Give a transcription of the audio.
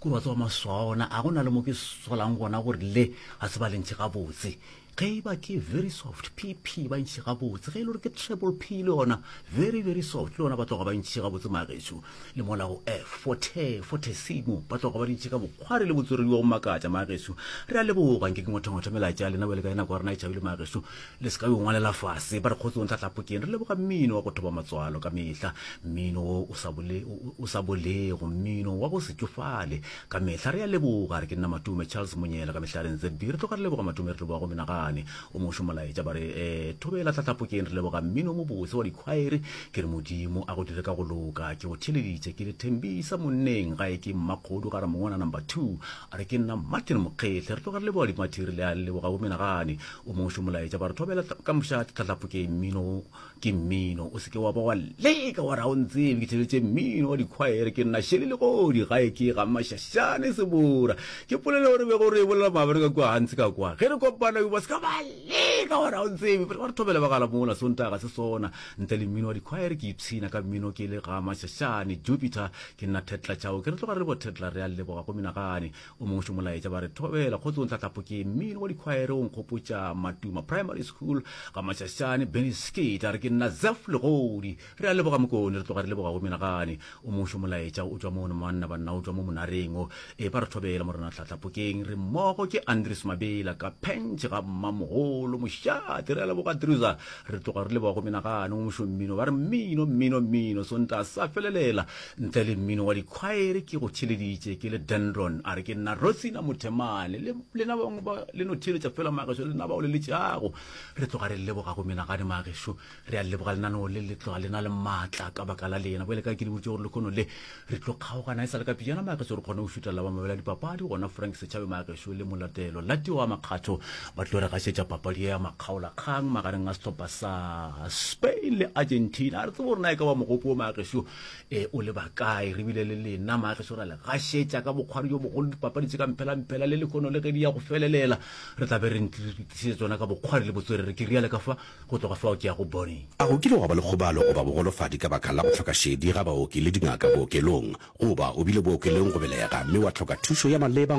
Kore wa tseba maswao ona a go na le mo ke solang gona gore le ga se ba lentšhe gabotse ge e ba ke very soft pp ba ntšhe gabotse ge e le gore ke treble p le yona very very soft le yona ba tloga ba ntšhe gabotse magetšo le mola go f forte fortesimo ba tloga ba di ntšhe ka bokgware le botsweredi wa go makatša magetšo re a leboga nke ke ngwathongwathwa melaetša ya lena bjale ka e nako ya rena e tšhabile magetšo Le se ka yo ngwalela fase. Ba re kgotsong tlatlapokeng. Re leboga mmino wa go thoba matswalo ka mehla. Mmino wo o sa bole, o sa bolego. Mmino wa go se tšofale ka mehla. Re a leboga. Re ke nna Matume Charles Monyela ka mehlare NZB. Re tloga re leboga Matume re leboga go menagane. O mošo molaetša ba re eh thobela tlatlapokeng re leboga mmino o mobotse wa dikhwaere. Ke re Modimo a go dire ka go loka. Ke go theeleditše ke le Thembisa monneng gae ke mmakgodu ga Ramongwana number two. Re ke nna Martin Mokgehle. Re tloga re leboga Dimathiri le a leboga bo menagane. o mošo molaetša ba re thobela ka moša tlhatlhapho ke mmino ke mmino o seke wa ba wa leka wa ra o ntsebe ke tšheletše mmino wa dikhwaere ke nna šele legodi gae ke ga mašašane sebora ke polela gore bego re e bolela mabere ka kua gantsi ka kwa ge re kopana ba seka ba leka wa ra o ntsebe ba re thobela ba gala mola sontaga se sona ntle le mmino wa dikhwaere ke ipshina ka mmino ke le ga mašašane jupiter ke nna thetla tšhao ke re tloga re le bo thetla re a leboga go menagane O mongwe šo molaetša ba re thobela kgotsong tlatlapo ke mmino wa dikhwaere o nkgopotša matuma primary school ga matšašane benny skate a re ke nna zef legodi re a leboga mokone re tloga re leboga go menagane o mongwe šo molaetša o tšwa mono manna banna o tšwa mo monareng o e ba re thobela morena tlatlapokeng re mmogo ke andres mabela ka pentšhe ga mmamogolo mošate re a leboga druza re tloga re leboga go menagane o mošo mmino ba re mmino mmino mmino sonta sa felelela Ntle le mmino wa dikhwaere ke go theleditše ke le Dendron a re ke nna Rosina Mothemane le lena bangwe ba le no theeletša fela magešo lena bao le letšago re tloga re leboga go menagane magešo re a leboga lenaneo le le tloga le na le maatla ka baka la lena bjale ka ke le boditše gore le kgono le re tlo kgaogana e sa le ka pejana magešo re kgone go šutha la ba mabela dipapadi gona Frank Setšhabe magešo le molatelo la tioga makgatho ba tlo re gašetša papadi ya makgaola kgang magareng a setlhopha sa Spain le Argentina a re tsebo rena e ka ba mogopo o magešo e o le bakae re bile le lena maageso ra le gašetša ka bokgwari jo bogolo dipapadi tse ka mphelampphela le lekono le ge di ya go felelela re tla be re ntlišitse tsona ka bokgwari le botswerere ke riale ka fa go tloga fao ke ya go bone A go kile gwa ba le kgobalo goba bogolofadi ka baka la go hloka šedi ga baoki le dingaka bookelong? Goba o bile bookelong go belega mme wa hloka thušo ya maleba?